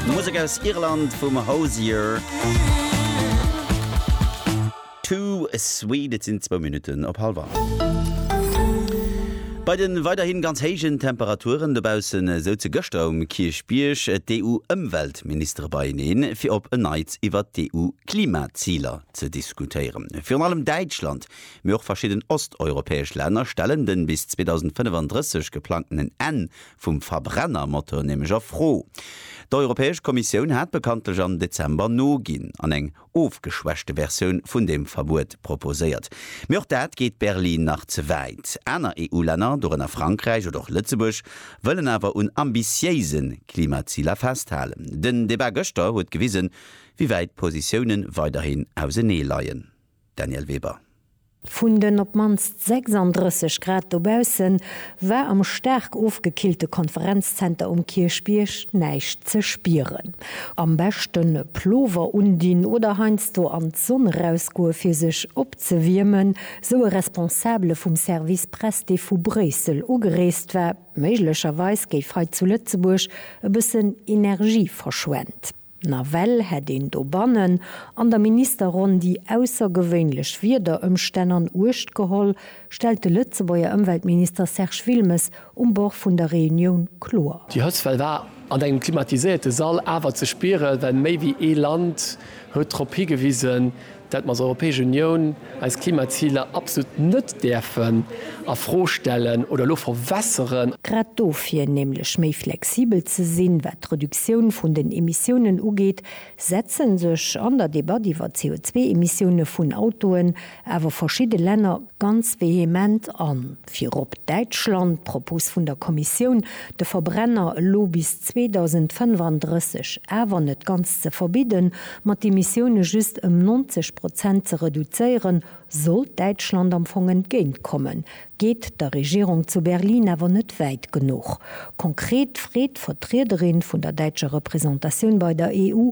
Musek aus Irland vum Hozier. Too sweet, et sinn zwou Minutten op hallef an. Bei de weiderhi ganz héijen Temperaturen dobausse souze gëschter um Kierchbierg d'EU-Ëmweltministere beieneen, fir op en Neits iwwert d'EU-Klimaziler ze diskutéieren. Virun allem Däitschland, mee och verschidden osteuropäesch Länner stellen den bis 2035 geplangtenen Enn vum Verbrennermotor nämlech a Fro. D'Europäesch Kommissioun hat bekanntlech am Dezember noginn an eng ofgeschwächte Versioun vun deem Verbuet proposéiert. Mee och dat geet Berlin nach ze wäit. Aner EU-Länner, dorënner Frankräich oder och Lëtzebuerg, wëllen awer un ambitiéise Klimaziler festhalen. Den Debat gëschter huet gewisen, wéi wäit d'Positioune weiderhin ausenee leien. Danièle Weber. Vun den op d'mannst 36 Grad dobausse war am staark ofgekillte Konferenzzenter um Kierchbierg näischt ze spieren. Am beschten e Plover undinn oder heiansdo an d'Sonn erausgoe fir sech opzewiermen, sou e Responsabele vum Service Press, dee vu Bréissel ugereest war. Méiglecherweis géif hei zu Lëtzebuerg e bëssen Energie verschwent. Nawell hätt een dobannen an der Ministerronn déi aussergewéinlech Wiederëmstänn an Uecht geholl, stellt de Lëtzebuerger Ëmweltminister Serge Wilmes um Bord vun der Reunioun kloer. Déi Hëtztwell war an engem klimatiséierte Sall awer ze spieren, well méi wéi ee Land huet drop higewisen, datt mer als Europäesch Unioun eis Klimaziler absolut net däerfen a Fro stellen oder elo verwässeren. Grad dofir, nämlech méi flexibel ze sinn, wat d'Reduktioun vun den Emissiounen ugeet, setze sech an der Debatt iwwer d'CO2-Emissioune vun Autoen awer verschidde Länner ganz vehement an. Virop Däitschland, d'Propos vun der Kommissioun, de Verbrenner elo bis 2035 awer net ganz ze verbidden, ma d'Emissioune just ëm 90 Prozent ze reduzéieren, sollt Däitschland am Fong entgéintkommen, geet der Regierung zu Berlin awer net wäit genuch. Konkret freet d'Vertriederin vun der däitscher Representatioun bei der EU,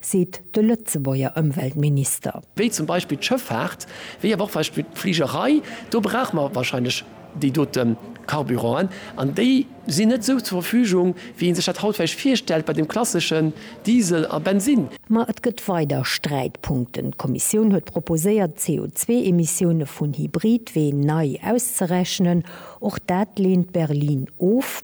seet de Lëtzebuerger Ëmweltminister. wéi zum Beispill d'Schëffaart, wéi awer och Beispill d'Fligerei, do brauche mer wahrscheinlech déi dote Carburanten, an déi sinn net esou zur Verfügung, wéi ee sech dat haut vläicht virstellt bei dem klasseschen Diesel a Bensinn. Ma et gëtt weider Sträitpunkten. D'Kommissioun huet proposéiert, d'CO2-Emissioune vun Hybridween nei auszerechnen. Och dat leent Berlin of.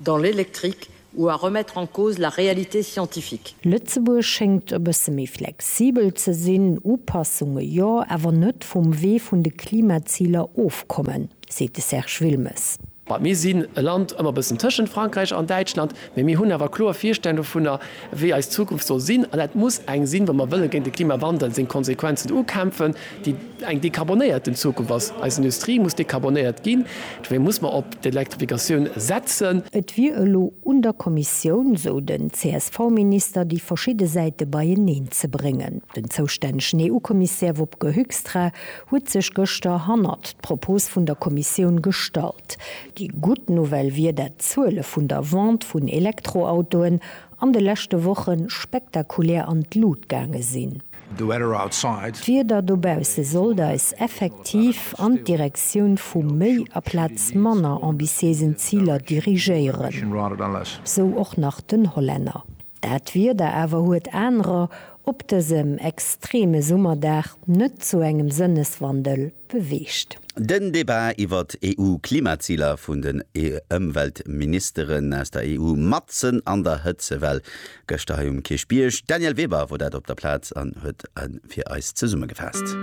dans l'électrique ou à remettre en cause la réalité scientifique. Lëtzebuerg schéngt e bësse méi flexibel ze sinn, Upassunge jo, awer net vum Wee vun de Klimaziler ofkommen, seet de Serge Wilmes. Well mir sinn e Land ëmmer e bëssen tëschent Frankräich an Däitschland, mee mir hunn awer kloer Virstellung dovunner, wéi eis Zukunft soll sinn. An dat muss eng sinn, wa mer wëlle géint de Klimawandel seng Konsequenzen ukämpfen, déi eng dekarbonéierten Zukunft ass, eis Industrie muss dekarbonéiert ginn, dofir muss mer op d'Elektrifikatioun setzen. Et wier elo un der Kommissioun, sou den CSV-Minister, déi verschidde Säite beieneen ze bréngen. Den zoustännegen EU-Kommissär Wopke Hoekstra huet sech gëschter hannert d'Propos vun der Kommissioun gestallt. Déi gutt Nouvelle wier, dat d'Zuele vun der Vente vun Elektroautoen an de leschte Woche spektakulär an d'Lut gaange sinn. D'Wieder dobausse sollt eis effektiv an d'Direktioun vu méi aplaz manner ambitiéisen Ziler dirigéieren, sou och nach den Hollänner. Dat Wieder awer huet anerer op dësem extreme Summerdag net zu engem Sënneswandel beweegt. Den Debat iwwert EU-Klimaziler vun den Ëmweltministeren aus der EU matzen an der Hëtzewell. Gëschter hei um Kierchbierg. D'Danièle Weber wor dat op der Plaz an huet en fir eis zesummegefaasst.